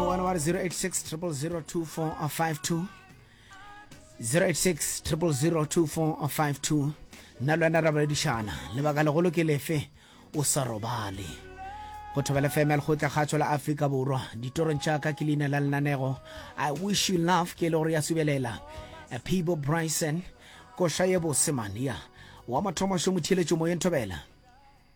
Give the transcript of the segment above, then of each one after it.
One one zero eight six triple zero two four or five two zero eight six triple zero two four or five two nna le wena ra boledišana lebaka legolo ke lefe o sa robale go thobela fm ya lekgotla kgatšo la afrika borwa ditorong tša ka ke leina la lenanego i wish you love ke e le gore ya subelela people bryson koša ye bose mania wa mathomo šomotheletšo moyeng thobela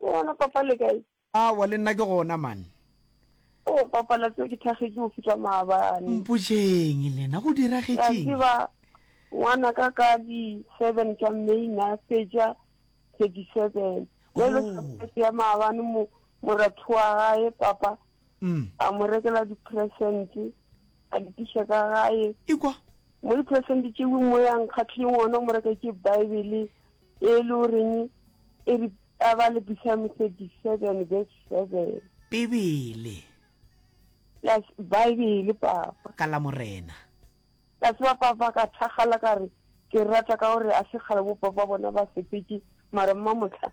Ke gona papa le kae? Aowa le nna ke gona man. Oh papa la tseo ke thagetše go fihla maabane. Mpotšeng lena go diragetšeng? La tseba ngwana ka ka di seven tša May na fetša thirty seven. Bjale sa ya maabane mo moratho wa gae papa mm. a mo rekela di-presente a di tiša ka gae ikwa mo di-presente tšeo mo yang kgatlheng ona o mo reka ke bibele e le goreng e re a ba le psalm thirty seven verse seven bibele yes bibele papa ka la morena ka tseba papa ka thagala ka re ke rata ka gore a se kgale bo papa bona ba sepetse mara mma motlha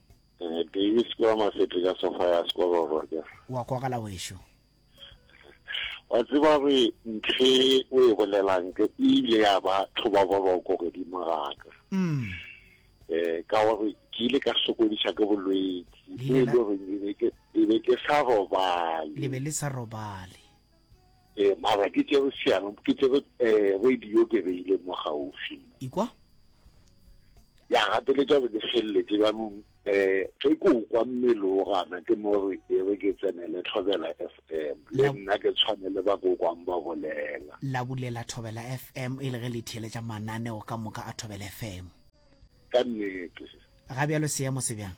Eh, Davis ke wa mafete ka sofa ya sekwa ba borwa wa kwagala wešo wa tseba re ntlhe o e bolelang ke ile ya ba tlhoba boroko godimo gaka mm. eh ka gore ke ile ka sokodisa ke bolwetsi e le gore e be ke sa robale le be le sa robale Eh, mara ke tsere seano ke tsere um eh, radio ke beile mo gaufi ikwa ya gateletša gore ke feleletse jaanong um eh, ge ke o kwa mmele o gana ke mo re e re ke tsenele thobela f m le nna ke tshwane le ba ko kwang ba bolela la bulela thobela f m e le ge le theeletša mananeo ka moka a thobela f m ka nnete ga bjalo seemo se bjang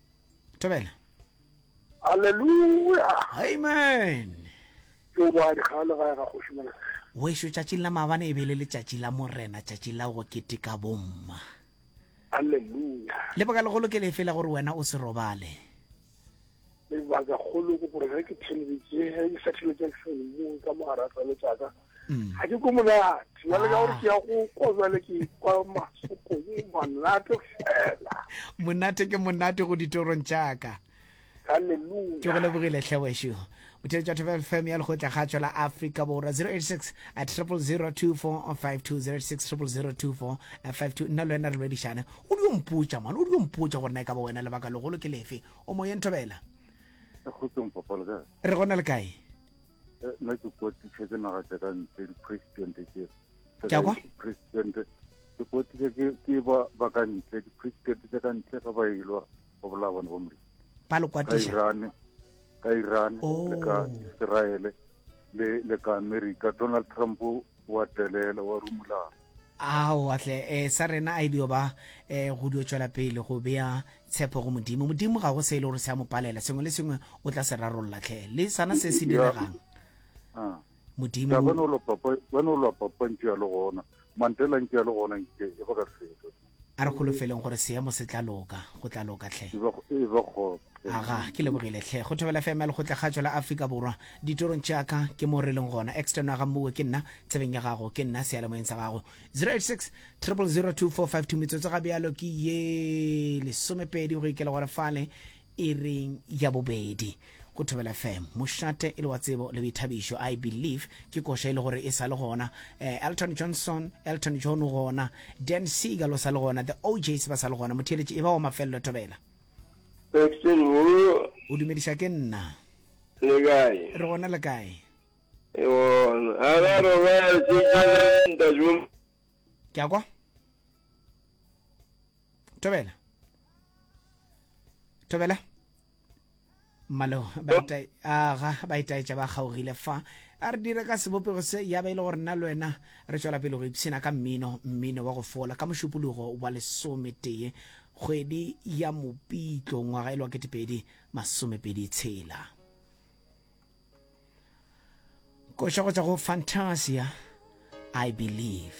tobela Hallelujah. amen Ke o badi ga le gae ga kgoši mona. wešo tšatšing la maabane e be e le letšatši la morena tšatši la go keteka bomma Hallelujah. lebaka legolo ke lefe la gore wena o se robale Lebaka kgolo ke gore ge ke thelebetse ge ke sa thibetse ke mo ka mogara tsa letsaka. ga ke ko monate jale ka gore ke ya go kwa jale ke kwa masokong monate fela monate ke monate go ditorong tšaka ke go lebogile tlhewešo botheletša thoba fm ya lekgotla ga tšwela africa borwa 086 at 002452 nna le wena re lwedišane o di ompotša mane o di ompotša gore na e ka ba wena lebaka legolo ke lefe o moyeng thobela re gona le kae Eh, nna ke kotiše ke naga tša ka ntle di-president ke president ke kotiše ke ba ka ntle di-president tša ka ntle ga ba ilwa go bolaya bone bo mre ba le kwatiša ka iran le ka oh. israele le ka america donald trump wa telela wa rumulana ao atle e eh, sa rena a e dio ba eh, go dio tšwela pele go bea tshepo go modimo modimo ga go se e le gore se a mo palela sengwe le sengwe o tla se rarolola tlhe le sana se se diregang ah. modimo ya gona o lopa gona o lopa pantsi ya le gona mantela ntse ya le gona nke e go ka fetsa A re holofeleng gore seemo se tla loka. Go tla loka, tlhe. E bego, e bego, tlhe. Aga, ke lebogile, tlhe. Go thobela FM ya Lekgotlakgatsho la Afrika Borwa. Ditorong tša ka, ke mo re leng gona. External ga mmuwe, ke nna. Tsebeng ya gago, ke nna. Seyalemoyeng sa gago. 086 000 2452 Metsotso ga bjalo ke ye lesomepedi go ikela gore fale. e reng ya bobedi go thobela fm mošate e le wa tsebo le boithabišo i believe ke koša e le gore e sa le gona eh, elton johnson elton john o gona dan seagal o sa le gona the ojs ba sa le gona motheeletši e ba wa mafelelo thobela Paxton wo o dumediša ke nna le kae re gona le kae e wona a ga robala tšetšelenta jo ke a kwa tobela tobela mmalo aga ba itaetša ba kgaogile fa a re dire ka sebopego se ya ba e le gore nna le wena re tswela pele go ipshina ka mmino mmino wa go fola ka mošupologo wa lesometee kgwedi ya mopitlo ngwaga e le wa ketepedi masomepedi tshela koša go tswa go fantasia i believe